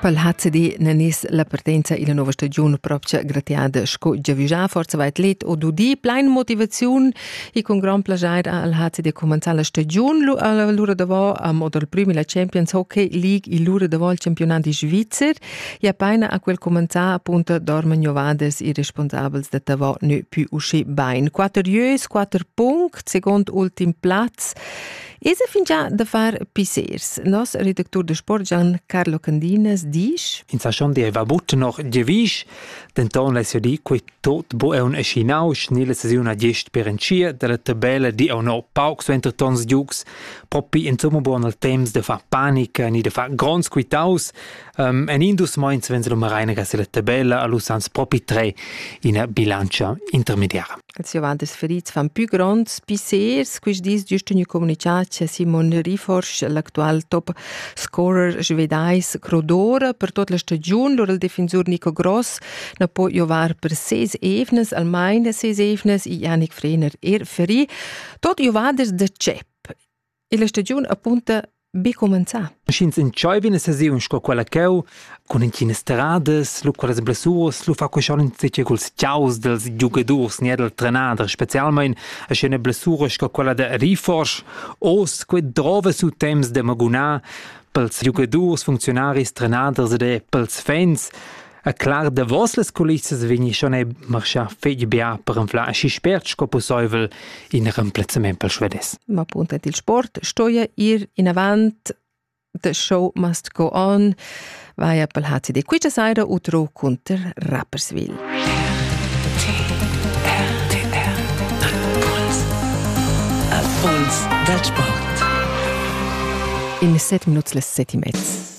Pel HCD ne nis la partenza illa nouva stagiun propcha gratiada sco giavüschà forza va atlet o dudi plain motivaziun e cun grand plajair al HCD cumanzà la stagiun lura davò a modo dal prüm illa Champions Hockey League e lura davò al campionat di Svizzer e apaina a quel cumanzà appunta dorman jovadas e responsabels da davò ne pü uschi bain. Quatterieus, quatter punct, second ultim plaz Esa fingià da far pissers. Nos redactur de sport Gian Carlo Candinas disch: In sa schon deva butten noch devisch, denton less di quei tot bo eun eschinau schnelle saziun a gest per enchia dalla tabella di au no pauc su entre tons giugs, propi insomma buon al temps de far panica ni de far gronds quitaus, um, en indus meins venz lo Mareina gas la tabella a lu sans propi tre ina bilancia intermediara. Els giovantes ferits fan pü gronds pissers. Quist dis giust gnü comunichà cha Simon Riforsch, l'actual top scorer svedais, crodora per tot la stagiun lur il defensur Nico Gross na po giovar per ses evnas, almain ses evnas i Janik Frener er ferì. Tot giovaders da CEP e la stagiun apunta be cumenzà. Sch'ins entscheiva ina sesiun sco quella cheu, cun entginas terradas, lu quellas blessuras, lu fa quei schon insitge culs tiaus dels giugadurs ne del trenader, specialmein a sch'ina blessura sco quella de Riforsch, os quei drova su temps de magunar pels giugadurs, funzionaris, trenaders ed pels fans. E clar davos las culissas vegni schon ei marschar fetg bia per anflar aschi spert sco pusseivel in remplazzament per svedes. Ma appunto il sport stoja ir in avant The show must go on vaia pel HCD Quiccia Saira utro cunter Rapperswil. Al Puls dal Sport. In set minuts les set e mezz.